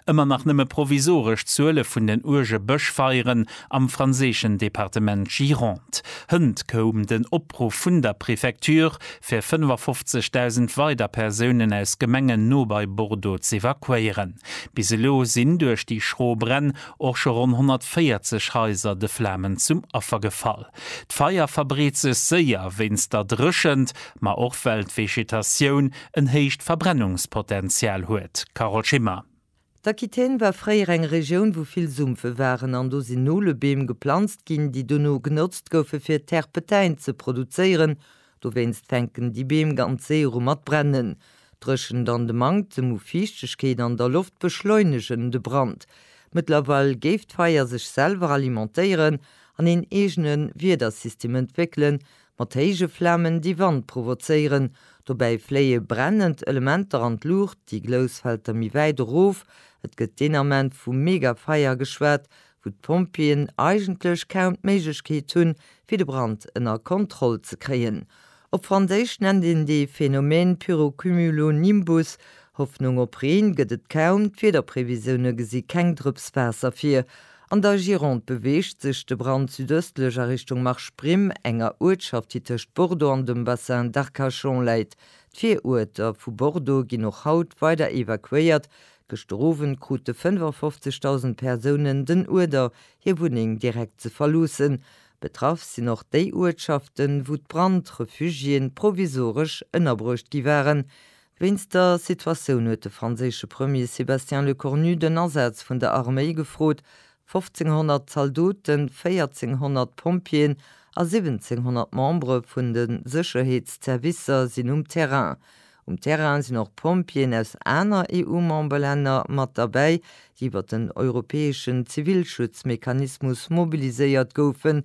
Ëmmer nach nëmme provisoresch Zuele vun den uerge Bëschfeieren am franséischen Departement Gironde. Hënt koum den Opruff vun der Prefecture, fir 55.000 weider Persounen aus Gemengen no bei Bordeaux z'evakuéieren. Bis elo sinn duerch déi schro Bränn och scho ronn 140 Haiser de Flamen zum Affer gefall. D'Feier verbreet sech séier wéinst der Dréchent, ma och well d'Vegetatioun en héicht Verbrennungspotential huet. Carole Schimmer. D'Aquitaine war fréier eng Regioun, wou vill Sumpfe waren, an do sinn Nolebeem geplanzt ginn, déi dono genotzt goufe fir Terpetain ze produzéieren. Dowéinst fänken déi Beem ganz séier u mat brennen. D'Dréchent an de Manktem u Fiichtegkeet an der Loft beschleunegen de Brand. Mëttlerweil géif d'Feier sech selwer alimentéieren an een eegene Wiedersystem entwéckelen, mat héije Flamen, déi Wand provozéieren, dobäi fléie brennend Elementer an d'Luucht, déi Glous fält da méi wäit erof, et gëtt deen Ament vu Megafeier geschwat, wou d'Pompjeeën eigentlech kaum d'Méiglechkeet hunn, fir de Brand ënner Kontroll ze kréien. Op Franséisch nennt een dee Phänomen Pyrocumulonimbus. Hoffnung op Reen gëtt et kaum, d'Wiederprevisioune gesi keng Drëps Waasser vir. An der Gironde beweegt sech de Brand südëstlech a Richtung Marche Primm, enger Uertschaft, déi tëscht Bordeaux an dem Bassin d'Arcachon läit. D'Viruerter vu Bordeaux ginn och haut weider evakuéiert. Gëschter Owend krute 55.000 Persounen den Uerder, hir Wunneng direkt ze verloossen. Betraff sinn och déi Uertschaften, wou d'Brand-Refugiéen provisoresch ënnerbruecht gi waren. Wéinst der Situatioun huet de franséische Premier Sébastien Lecornu den Asaz vun der Arméi gefrot, 1.500 Zaldoten, 1.400 Pompjeeën a 1.700 Membere vun de Sécherheetszervicer sinn um Terrain. Um Terrain sinn och Pompjeeën aus aner EU-Memberlänner mat derbäi, déi iwwer den europäeschen Zivilschutzmechanismus mobiliséiert goufen.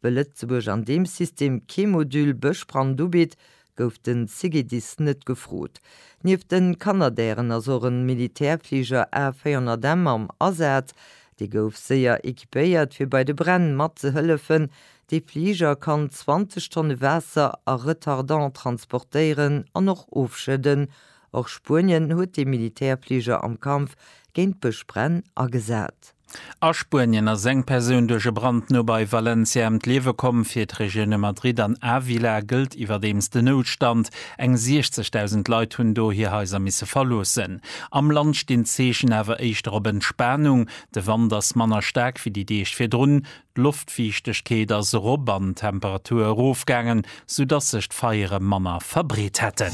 Well Lëtzebuerg an deem System kee Modul Bëschbrand ubitt, gouf den CGDIS net gefrot. Nieft den Canadairen ass och en Militärfliger A400M am Asaz. Dee gouf séier equipéiert fir bei de Bränn mat ze hëllefen. Dee Fliger kann 20 Tonne Waasser a Retardant transportéieren an och ofschëdden. Och Spuenien huet dee Militärfliger am Kampf géint Bëschbränn agesat. A Spuenien ass eng Persoun duerch e Brand no bei Valencia ëm d'Liewe komm. Fir d'Regioune Madrid an Ávila gëllt iwwerdeems de Noutstand. Eng 60.000 Leit hunn do hir Haiser misse verloossen. Am Land stinn d'Zeechen awer éischter op Entspanung. De Wand ass manner staark wéi déi Deeg virdrun. D'Loftfiichtegkeet ass erop an d'Temperature erofgaangen, sou dass sech d'Feiere manner verbreet hätten.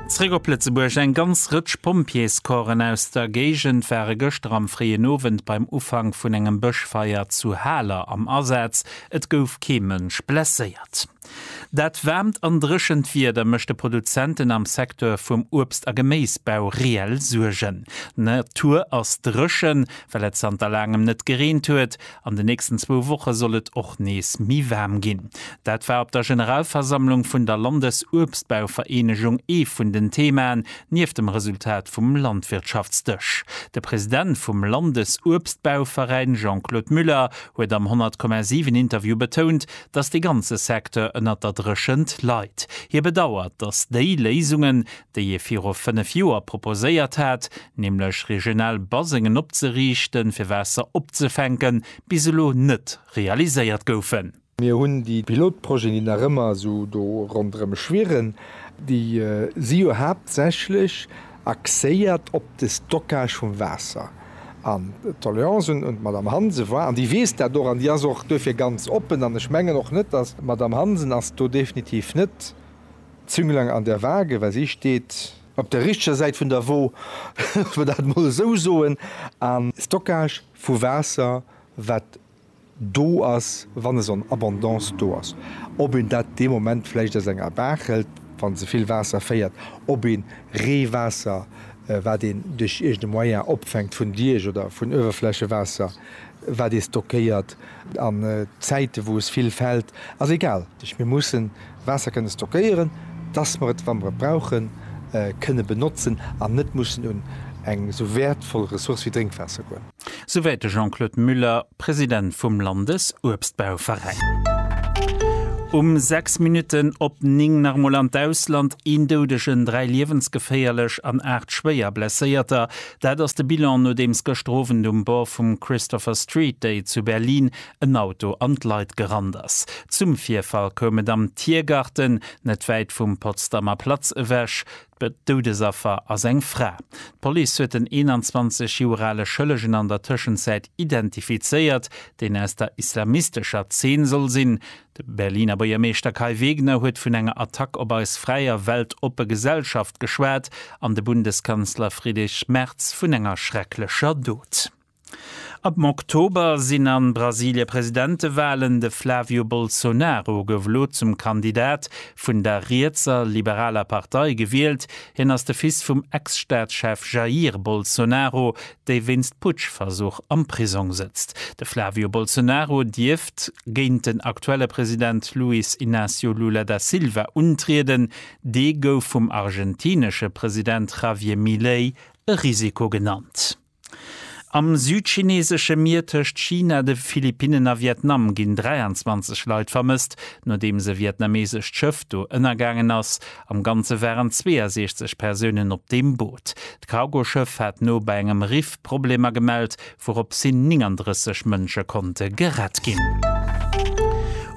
Zréck op Lëtzebuerg, Eng ganz Rëtsch Pompjeescorpsen aus der Géigend ware gëschter am fréien Owend beim Ufank vun engem Bëschfeier zu Haler am Asaz. Et gouf kee Mënsch blesséiert. Dat waarmt an dréchent Wieder mécht de Produzenten am Secteur vum Uebst a Geméisbau reell Suergen. D'Natur ass dréchen, well et zanter laangem net gereent huet. An de nächsten zwou Woche soll et och nees méi waarm ginn. Dat war op der Generalversammlung vun der Landesuebstbauvereenegung ee vun den Theemaen, nieft dem Resultat vum Landwirtschaftsdësch. De President vum Landesuebstbauveräin Jean-Claude Muller huet am 100,7 Interview betount, dass dee ganze Secteur ënnert der Dréchent leit. Hie bedauert, dass déi Léisungen, déi ee viru fënnef Joer proposéiert hat, nämlech regional Basengen opzeriichten, fir Waasser opzefänken, bis elo net realiséiert goufen. Mir hunn déi Pilotprojeten, déi nach ëmmer esou do ronderëm schwirren, déi si jo haaptsächlech, axéiert op de Stockage vum Waasser. An d'Doléance un d'Madame Hansen war, an déi weess dat och an déi ass och duerfir ganz oppen, an ech mengen och net, datt. D'Madame Hansen ass do definitiv net d'Zünglein an der Waage, well si steet. Op der richteger Säit vun der Wo, dass mer dat emol esou soen. A Stockage vu Waasser, wat do ass, wann esou en Abondance do ass, ob een dat dee Moment vläicht aus enger Baach hëlt, wa se vill Waasser féiert, ob ee Reewaasser, wat een duerch iergendee Moyen opfänkt vun Diech oder vun Uewerflächewaasser, wat ee stockéiert an Zäite wou es vill fält, ass egal. Mir mussen Waasser kënne stockéieren, dass mer et, wa mer et brauchen, kënne benotzen an net mussen un eng esou wäertvoll Ressource wéi Drénkwaasser goen. Souwäit de Jean-Claude Muller, President vum Landesuebstbauveräin. Um 6 Minutten op 9 nach emol an d'Ausland, Een Doudegen, dräi liewensgeféierlech an aacht schwéier Blesséierter, dat ass de Bilan, nodeems gëschter Owend um Bord vum Christopher Street Day zu Berlin en Auto an d'Leit gerannt ass. Zum Virfall koum et am Tiergarten, net wäit vum Potsdamer Platz ewech. D'Doudesaffer ass eng Fra. D'Police huet den 21 Joer ale Schëllegen an der Tëschenzäit identifizéiert, deen aus der islamistescher Zeen soll sinn. De Berliner Buergermeeschter Kai Wegner huet vun enger Attack op eis fräi a weltoppe Gesellschaft geschwat an de Bundeskanzler Friedrich Merz vun enger schrecklecher Dot. Am Oktober sinn a Brasilie Presidentewalen. De Flavio Bolsonaro gouf elo zum Kandidat vun der rietser liberaler Partei gewielt. Hien ass de Fils vum Ex-Staatschef Jair Bolsonaro, dee wéinst Putschversuch am Prisong sëtzt. De Flavio Bolsonaro dierft géint den aktuelle President Luiz Inácio Lula da Silva untrieden. Dee gouf vum argentinesche President Javier Milei e Risiko genannt. Am südchineesesche Mier tëscht China, de Philippinnen a Vietnam ginn 23 Leit vermësst, nodeems e vietnameesescht Schëff do ënnergaangen ass. Am Ganze waren 62 Persounen op deem Boot. D'Cargoschëff hat no bei engem Riff Problemer gemellt, wouropps hin 39 Mënsche konnte gerett ginn.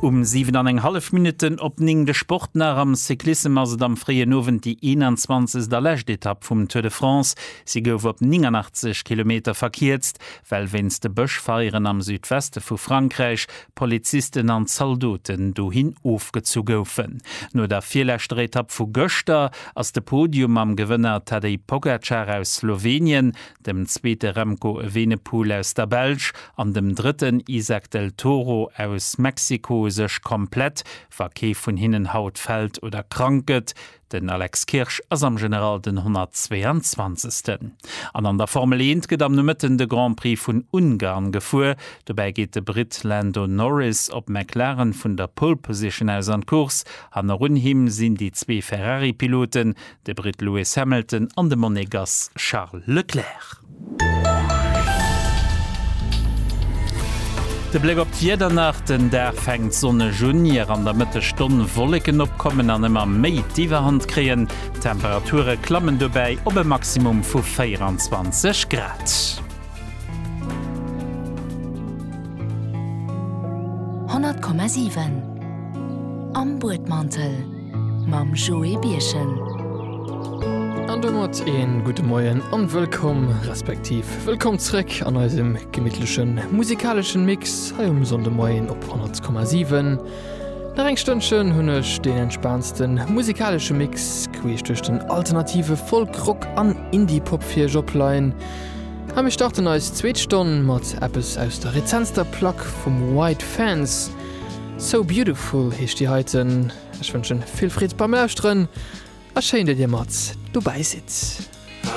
Um 7 an eng hallef Minutten op 9 de Sport nach, Am Cyclissem ass et am fréien Owend déi 21. a lescht Etapp vum Tour de France. Si gouf op 89 Kilometer verkierzt, well wéinst de Bëschfeieren am Südweste vu Frankräich Polizisten an Zaldoten dohin ofgezu goufen. No der virleschter Etapp vu gëschter ass de Podium mam Gewënner Tadej Pogacar aus Slowenien, dem zweete Remco Evenepoel aus der Belsch an dem drëtten Izack del Toro aus Mexiko sech komplett, wa kee vun hinnen haut fält oder krank gëtt, Den Alex Kirsch ass am General den 122. An an der Formel Eent gëtt am Nomëtten de Grand Prix vun Ungarn gefuer. Dobäi geet de Britt Lando Norris op McLaren vun der Pole Position aus an d'Course. Hannerun him sinn déi zwee Ferrari-Piloten, de Britt Lewis Hamilton an de Monegass Charles Leclerc. De Bléck op d'Wieder nach, Den Dag fänkt sonneg un, ier an der Mëttegstonn Wolleken opkommen an ëmmer méi d'Iwwerhand kréien. D'Temperature klammen dobäi op e Maximum vu 24 Grad. Honnert Komma siwen am Buedmantel. mam Joé Birchen. An domat een gudde Moien an wëllkomm, respektiv wëllkomm zréck an eisem gemittlechen musikaleschen Mix hei um Sonndemoien op 100,7. Nach eng Stënnchen hunn ech deen entspaantsten musikalesche Mix queesch duerch den alternative Folk, Rock an Indie-Pop fir iech opleien. A mir starten eis zweet Stonn mat eppes aus der rezentster Plack vum White Fence. So Beautiful heescht déi heiten. Ech wënschen vill Freed beim Lauschteren a schéin dat dir mat dobäi sidd.